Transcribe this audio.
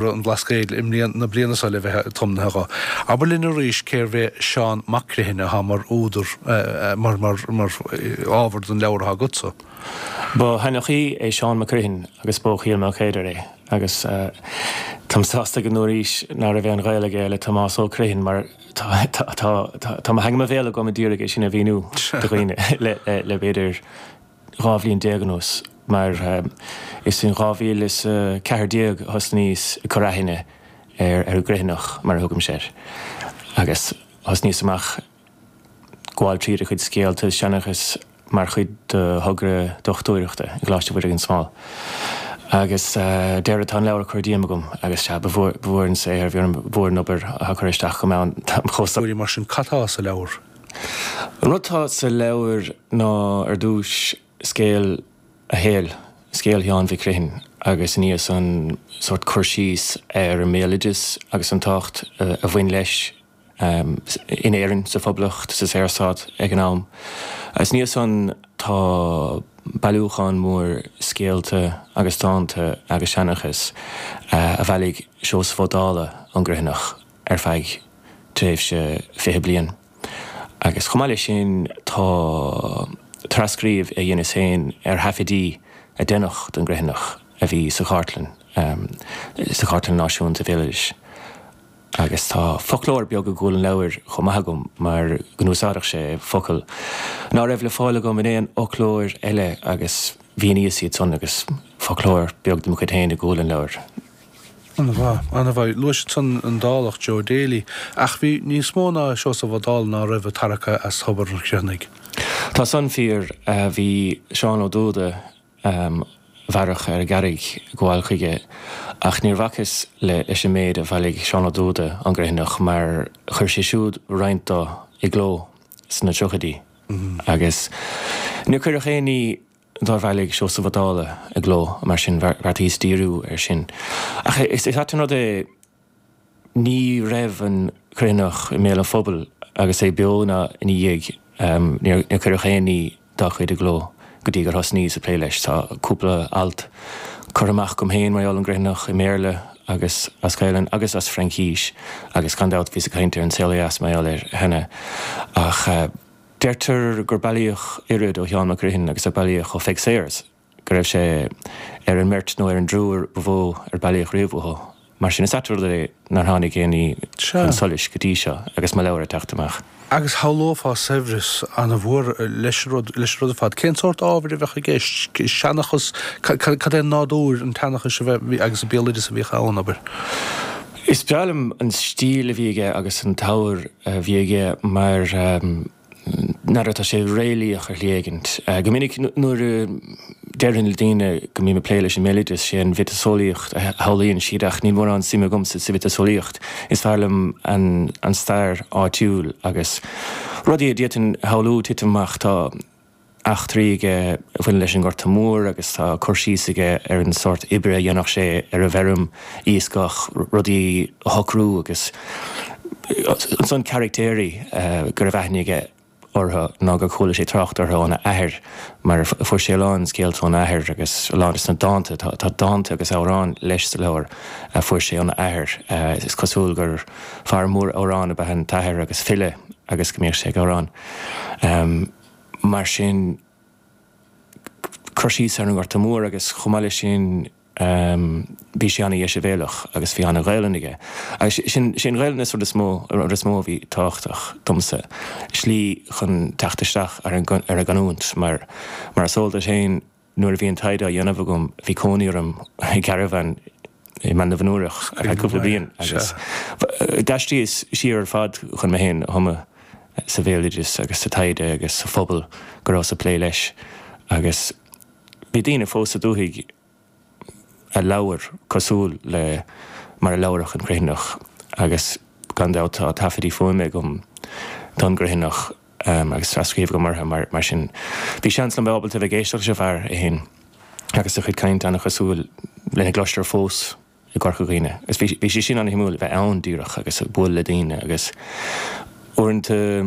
radh an Bhlascaoid na bliana seo le bheith tiomnaithe dho. Abair linn arís cérbh é Seán Mac Criomhthain atá mar údar, mar ábhar don leabhar atá agatsa. Ba sheanchaí é Seán Mac Criomhthain agus b'ó Chill Maoilchéadair é agus táim sásta go ndúraís ná raibh aon ghaol aige le Tomás Ó Criomhthain mar tá mo theanga mo bhéal agam a d'iarraidh é sin a mhíniú do dhaoine le b'fhéidir dhá bhliain déag anuas, mar is in 2014 a thosnaíos ag cur aithne ar an gCriomhthanach, mar a thugaimse air, agus thosnaíos amach ag gabháil tríd a chuid scéalta is seanchas mar chuid de thogra dochtúireachta i gColáiste Mhuire gan Smál. Agus deireadh, tá an leabhar curtha díom agam, agus sea, ba mhór an saothar a bhí orm, ba mhór an obair, a chur isteach agam ann. Mhuire, mar sin, cad tá sa leabhar? An rud atá sa leabhar ná ar dtús scéal a shaoil, scéal Sheáin Mhic Criomhthain agus ina dhiaidh san sórt cur síos ar an mbéaloideas agus an tábhacht a bhain leis in Éirinn, sa Phoblacht, sa Saorstát ag an am. Agus ina dhiaidh san tá bailiúchán mór scéalta agus dánta agus seanchas a bhailigh Seosamh Ó Dálaigh ón gCriomhthanach, ar feadh tréimhse fiche bliain. Agus chomh maith leis sin, tá trascríobh a dheineas féin ar thaifidí a deineadh don gCriomhthanach a bhí sa Chartlann, sa Chartlann Náisiúnta Béaloidis. Agus tá foclóir beag i gcúl an leabhair chomh maith agam mar go n-úsáideadh sé focail ná raibh le fáil agam in aon fhoclóir eile agus mhíníos iad san agus foclóir beag de mo chuid féin i gcúl an leabhair. An-mhaith, an-mhaith. Luais ansan an Dálach Joe Daly, ach bhí níos mó ná Seosamh Ó Dálaigh ná raibh ag tarrac as thobar an Chriomhthanaigh. Tá san fíor, bhí Seán Ó Dubhda a mhaireadh ar an gCarraig ag gabháil chuige ach níor bhacas leis an méid a bhailigh Seán Ó Dubhda ón gCriomhthanach mar chuir sé siúd roinnt dó i gcló sna tríochaidí agus níor cuireadh aon ní Dár bhailigh Seosamh Ó Dálaigh i gcló, mar sin, bheartaíos díriú air sin. Ach is ait an rud é, ní raibh an Criomhthanach i mbéal an phobail agus é beo ná ina dhiaidh, níor cuireadh aon ní dá chuid i gcló go dtí gur thosnaíos ag plé leis. Tá cúpla alt curtha amach agam féin, mar gheall ar an gCriomhthanach, i mBéarla agus as Gaelainn agus as Fraincís, agus gan dabht bhíos ag caint ar An Saol Ó Dheas mar gheall air cheana, ach. Deirtear gur bailíodh oiread ó Sheán Mac Criomhthain agus a bailíodh ó Pheig Sayers, go raibh sé ar an mbeirt nó ar an dtriúr ba mhó ar bailíodh riamh uathu. Mar sin, is ait an rud é nár tháinig aon ní chun solais go dtí seo agus mo leabhar ag teacht amach. Agus shamhlófá saibhreas an-mhór leis an rud ar fad. Cén sórt ábhair a bheadh i gceist? Seanchas? Cad é nádúr an tseanchais a bhí agus an béaloideas a bhíodh ann, abair? Is breá liom an stíl a bhí aige agus an t-ábhar a bhí aige mar n'fheadar, tá sé réalaíoch ar shlí éigint. Go minic nuair a deirim le daoine go mbím ag plé leis an mbéaloideas, sé an mhiotaseolaíocht a shamhlaíonn siad ach níl mórán suime agamsa sa mhiotaseolaíocht, is fearr liom an stair áitiúil agus rudaí a d'fhéadfainn a shamhlú titim amach. Tá. eachtraí aige a bhaineann leis an nGorta Mór agus tá cur síos aige ar an sórt oibre a dhéanadh sé ar an bhfeirm, iascach, rudaí a shocrú agus ansan caraictéirí go raibh aithne aige orthu nó gur chuala sé trácht orthu óna athair mar fuair sé a lán scéalta óna athair agus a lán de sna dánta, tá dánta agus amhráin leis sa leabhar a fuair sé óna athair, is cosúil gur fear mór amhrán ab ea an t-athair agus file agus go mbíodh sé ag amhrán. mar sin, cur síos ar an nGorta Mór agus chomh maith leis sin bhí sé an-dheisibhéalach agus bhí an-Ghaelainn aige agus sé an Ghaelainn is rud is mó, rud is mó a bhí tábhachtach domsa, slí chun teacht isteach ar an gcanúint mar is eol duit féin, Nuair a bhí an taighde á dhéanamh agam bhí cónaí orm i gcarabhán i mBaile na bhFionnúrach ar feadh cúpla bliain agus d'aistríos siar ar fad chun mé féin a thumadh sa bhéaloideas agus sa taighde agus sa phobal go rabhas ag plé leis agus bhí daoine fós sa dúthaigh a labhair cosúil le mar a labharadh an Criomhthanach agus gan dabht tá taifeadtaí fuaime agam don gCriomhthanach agus tras-scríobh agam orthu, mar sin bhí seans agam bheith ábalta a bheith ag éisteacht leis an bhfear é féin agus a chuid cainte an-chosúil lena gcloistear fós i gCorca Dhuibhne. Agus bhí sé sin an-shuimiúil, a bheith ann díreach agus ag bualadh le daoine agus uaireanta,